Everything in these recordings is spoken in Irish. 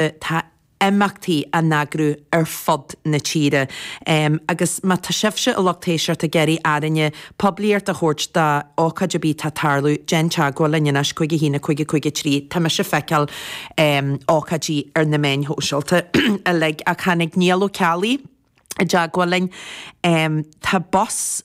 Tá imeachtaí á n-eagrú ar fud na tíre agus má tá sibhse an lucht éisteachta ag iarraidh orainne poiblíocht a thabhairt d'ócáid ar bith atá ag tarlú, déan teagmháil linn anois, cúig a haon a cúig a cúig a 3. Tá mise ag feiceáil ócáidí ar na meáin shóisialta uilig ach tháinig Niall Ó Ceallaigh i dteagmháil linn, tá bus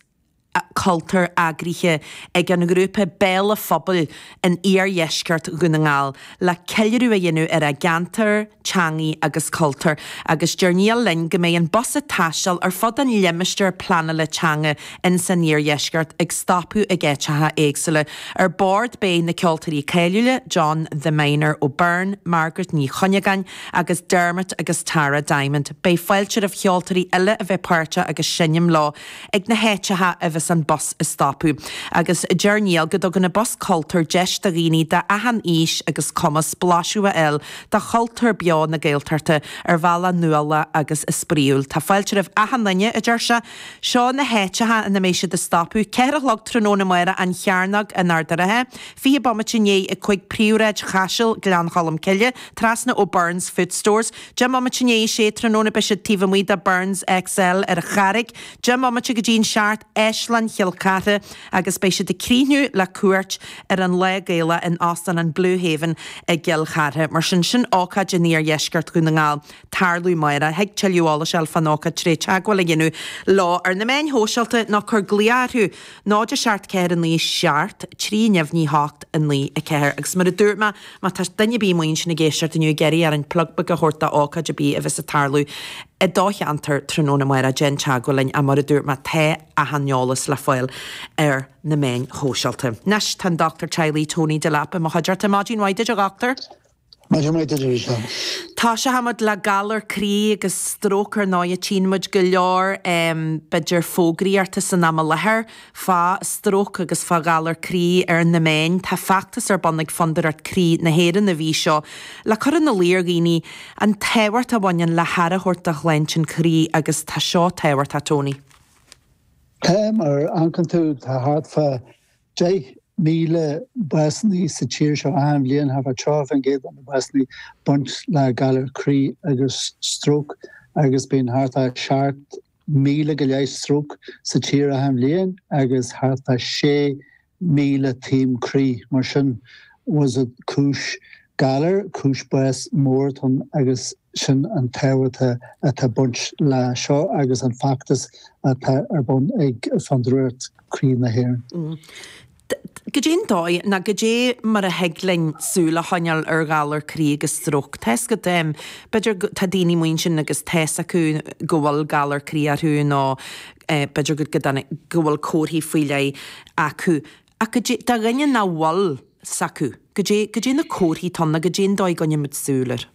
cultúir eagraithe ag an ngrúpa Béal an Phobail in iardheisceart Dhún na nGall le ceiliúradh a dhéanamh ar a gceantar, teangaidh agus cultúr agus deir Niall linn go mbeidh an bus ag taisteal ar fud an limistéir pleanála teanga in san iardheisceart ag stopadh ag áiteacha éagsúla. Ar bord beidh na ceoltóirí cáiliúla John 'The Miner' Ó Beirn, Margaret Ní Chuinneagáin agus Dermot agus Tara Diamond. Beidh fáilte roimh cheoltóirí eile a bheith páirteach agus seinm leo. ag na háiteacha a bheas an bus ag stopadh agus deir Niall go dtugann an bus cultúir deis do dhaoine d'achan aois agus cumas blaiseadh a fháil de chultúr beo na Gaeltachta ar bhealach nuálach agus spraíúil. Tá fáilte roimh achan duine, a deir sé. Seo na háiteacha ina mbeidh siad ag stopadh, ceathair a chlog tráthnóna amárach An Chearnóg in Ard an Rátha, fiche bomaite i ndiaidh a cúig Príomhshráid Chaisil, Gleann Cholm Cille, trasna ó Byrne's Food Stores, Deich mbomaite i ndiaidh a sé tráthnóna beidh siad taobh amuigh de Byrne's XL ar an Charraig, deich mbomaite go dtí an seacht, Áislann Chill Chartha, agus beidh siad ag críochnú le cuairt ar an Lár-Ghaeltacht in Óstán an Blue Haven i gCill Chartha. Mar sin, sin ócáid in Iardheisceart Dhún na nGall ag tarlú amárach. Thig tuilleadh eolais a fháil fán ócáid trí theagmháil a dhéanamh leo ar na meáin shóisialta nó cuir glaoch orthu. 0 7 4 9 7 3 9 8 9 4 Agus mar a dúirt mé, má tá duine ar bith amuigh ansin ag éisteacht inniu, ag iarraidh orainn plug beag a thabhairt d'ócáid ar bith a bheas ag tarlú i do cheantar tráthnóna amárach, déan teagmháil linn, ach mar a dúirt mé, tá achan eolas le fáil ar na meáin shóisialta. Anois, tá an Dr Teaghlaigh Tony Delap i mo chuideachta. Maidin mhaith duit, a Dhochtúir. Maidin mhaith duit, a Mhícheál. Tosóchaidh muid le galar croí agus stróc, ar ndóighe tchíonn muid go leor em b'fhéidir fógraí orthu san am i láthair fá stróc agus fá ghalar croí ar na meáin. Tá feachtas ar bun ag Fondúireacht Croí na hÉireann an mhí seo le cur ina luí ar dhaoine an tábhacht a bhaineann le haire a thabhairt do shláinte an chroí agus tá seo tábhachtach a Tony. Tá mar an dtuigeann tú tá thart fá 10,000 básannaí sa tír seo achan bhliain, thart fá 30% de na básannaí, baint le galar croí agus stróc agus bíonn thart fá 7,000 go leith stróc sa tír achan bhliain agus thart fá 6,000 taom croí. Mar sin, is é cúis galair, cúis bás mór atá ann agus. Sin an tábhacht atá ag baint le seo agus an feachtas atá ar bun ag Fondúireacht Croí na hÉireann. Goidén dóigh, nó goidé mar a thig linn súil a choinneáil ar ghalar croí agus stróc? Tá's agat, b'fhéidir, tá daoine amuigh ansin agus tá's acu go bhfuil galar croí orthu nó b'fhéidir go dtáinig, go bhfuil comharthaí faoi leith acu. Ach goidé do dhaoine nach bhfuil 's acu, goidé na comharthaí atá ann nó goidén dóigh a gcoinnímid súil air?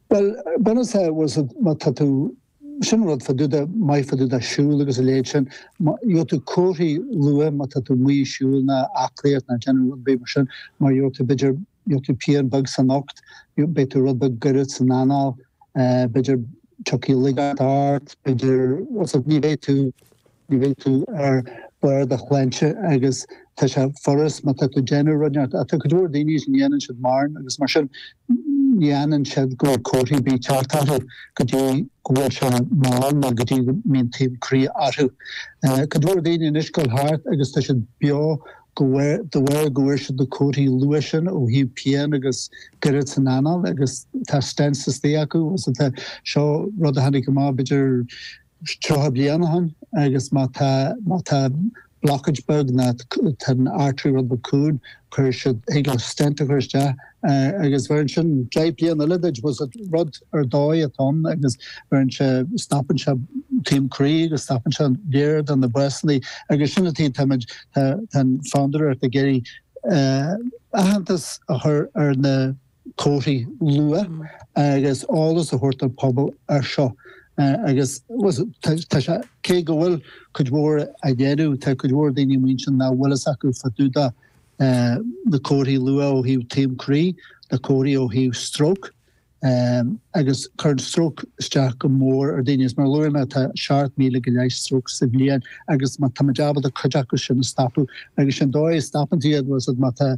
Bhuel, bunúsach, bhfuil 's agat, má tá tú, sin an rud fá dtaobh de, maith fá dtaobh de siúl agus a leithéid sin, má, gheobhaidh tú comharthaí luath má tá tú amuigh ag siúl ná aclaíocht ná déanamh rud ar bith mar sin, mar gheobhaidh tú b'fhéidir, gheobhaidh tú pian beag san ucht, beidh tú rud beag goirid san anáil, b'fhéidir tiocfaidh laigeacht ort, b'fhéidir, bhfuil 's agat, ní bheidh tú, Ní bheidh tú ar bharr do shláinte agus tá sé furast má tá tú ag déanamh rudaí. Ach tá go leor daoine nach ndéanann siad mórán agus mar sin ní aithníonn siad go bhfuil comharthaí ar bith ag teacht orthu go dtí go bhfuil sé mall nó go dtí go mbíonn taom croí orthu. Tá go leor daoine anois ag dul thart agus tá siad beo de bharr go bhfuair siad na comharthaí luath sin ó thaobh pian agus goirid san anáil agus tá stents istigh acu. Tá seo rud a tháinig amach b'fhéidir 30 bliain ó shin agus má tá, má tá blockage beag ná tá an artery rud beag cúng, cuirfidh siad, thig leo stent a chur isteach agus bheireann sin 10 bliain eile duit bhuel is rud ar dóigh atá ann agus bheireann sé, stopann sé taom croí agus stopann sé go leor de na básanna agus sin an taobh, táimid, tá an Fhondúireacht ag iarraidh aitheantas a chur ar na. comharthaí luath agus eolas a thabhairt don phobal ar seo agus tá sé, cé go bhfuil cuid mhór á dhéanamh, tá cuid mhór daoine amuigh anseo nach bhfuil fhios acu fá dtaobh de na comharthaí luath ó thaobh taom croí, na comharthaí ó thaobh stróc agus cuireann stróc isteach go mór ar daoine agus mar a luaigh mé tá 7,000 go leith stróc sa bhliain agus táimid ábalta cuid acu sin a stopadh agus sé'n dóigh a stopann tú iad, bhfuil 's agat, má tá